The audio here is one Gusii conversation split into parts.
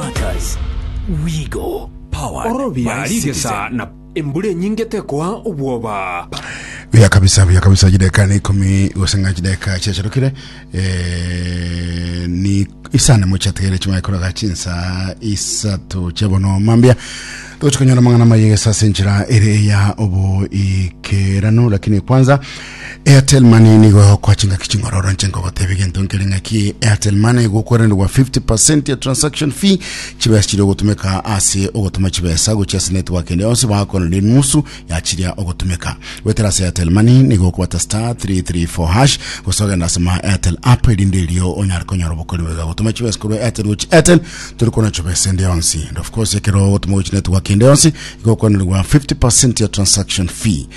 Matters. We go. Powered Ororobia by rigesa Citizen. na embura enyinge tekoa obwoba. buya kabisa buya kabisa chideka na ikumi goseng'a chideka chiacharukire eh, ni isane mochategere chimwaikoraga chinsa isato chebono mambia togochikonyora mang'ana mayegesa ase enchera ere ya oboikerano lakini kwanza Airtel Money nigo egokoa chingaki ching'ora oranche nkogotebia gento nkere ng'aki Airtel Money egokwerenerwa 50% ya transaction fee chibesa chiri ogotumeka ase ogotuma chibesa gochia ase network ende yonsi bakonerire nusu ya chiria ogotumeka gwetera ase Airtel Money nigo okobata star 334 hash gose ogenda ase ma Airtel app erinde erio onyare konyora obokori bwega gotuma chibesa korwa Airtel gochia Airtel turi kona chibesa ende yonsi and of course ekero ogotuma gochia network ende yonsi igokwenererwa 50% ya transaction fee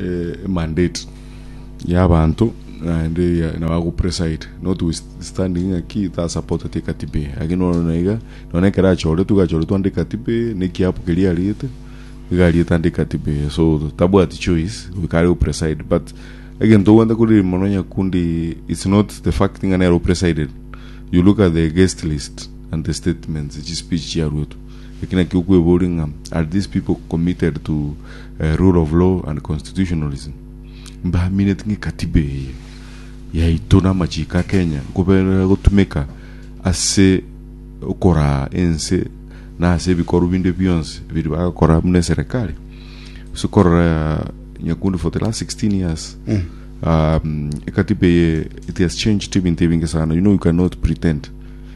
eh, mandate ya abanto naende ya- na bago preside not with standing ng'a ki ta support ati katiba eye lakini nono naiga none ekero achore tuga achore twande katiba eye ne kiapo keria ariete iga ariete ande katiba eye so tabwati choice goika are preside but egento ogwenta kuri mono nyakundi it's not the fact ng'a nero presided you look at the guest list and the statements chi speech chiaruetwe Eki nakio okweboria ng'a, Are these people committed to rule of law and constitutionalism? Mbaamineti ng'a ekatiba eye yaito na amachiko a Kenya nkoberera gotumeka ase okoraa ense na ase ebikorwa binde bionsi biri bagokora buna eserekari? Ase okorora nyakundi for the last 16 years um, ekatiba eye it has changed ebinto ebinge sana. You know you cannot pretend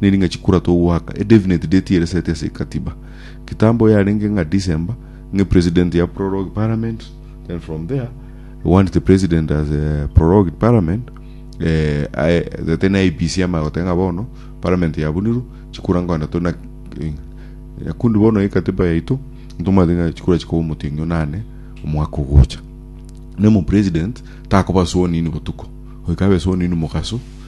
Neri ng'a chikura togoaka a definite date ere set ase ekatiba. Kitambo yarenge ng'a December ng'e president ya prorogue parliament then from there we want the president as a prorogued parliament eh, aye gete na IBC ama goteba ng'a bono parliament yabunirwe chikura nkonda to na yakundi bono ekatiba yaito ntomate ng'a chikura chikoba omoting'io nane omwaka ogocha nemo president takoba sworn in botuko oikabe sworn in mogaso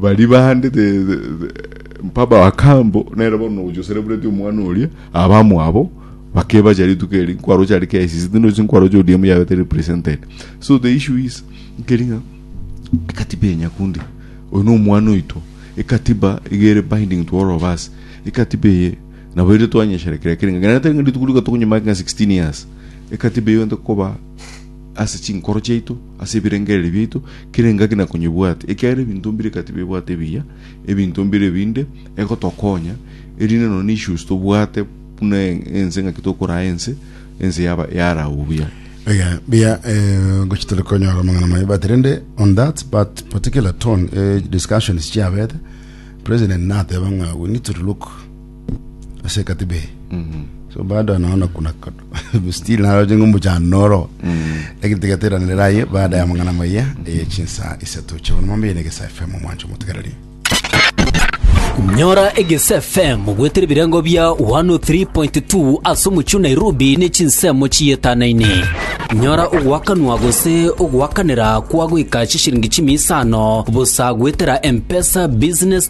Baria bande the, the, the mpaba wa kambo nere bono ogochosereburetie omwana oria abamwabo bakebacha rituko eri nkwaroche ari KICC tino isi nkwaroche ODM yabete represented so the issue is nkeringa ekatiba ya nyakundi oyo no omwana oito ekatiba igere binding to all of us ekatiba eye nabo ere twanyesherekera keringa ngana tenge rituko riko tokonyima nka 16 years ekatiba iyo nte koba ase chinkoro chiaito Ase ebirengererio biaito, kera engaki na konyebwate, ekiagera ebinto mbire eka tibebwate ebiya, ebinto mbire ebinde egotokonya, erinde nonya issues tobwate buna ense ng'aki tokoraa ense, ense yaba yaragwa buya. Iga, mbuya, eh, ngochi tore konyora amang'ana maye, but rende on that but particular tone, eh, discussions chiabete, president nateba ng'a we need to look ase ekatiba eye so baada ya naona kuna kado- still naroche ng'a omochando noro lakini tigeteranera aye baada ya amang'ana maya eye chinsa isato chiabona mambo eye na egesa fm omwancho omotegereri nyora egese fm gwetera ebirengo bia 103.2 ase omochie o nairobi ne chinsemo chietanaine nyora ogwakanwa gose ogwakanera kwa goika chishiringi chimia isano bosa gwetera mpesa business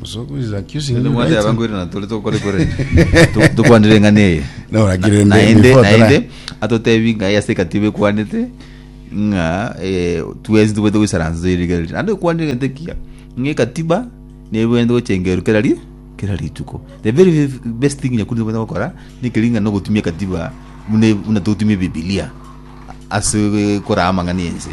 Musoku is accusing Nende you mwate right. abangwire na tore tokore kore Tu- tukwanire eng'ana eye No, lakini Na- ndi- naende before tara- naende atotebi ng'a ase ekatiba ekwanete ng'a eh, twesi tobwete goisaransa erige riri naende okwanire egento ekiya ng'a ekatiba nebwente gochengerwa kera ri kera rituko the very f- best thing nyakundi tobwete gokora nekeri ng'a nogotumia ekatiba buna buna togotumia ebibilia ase korama ng'a ne ense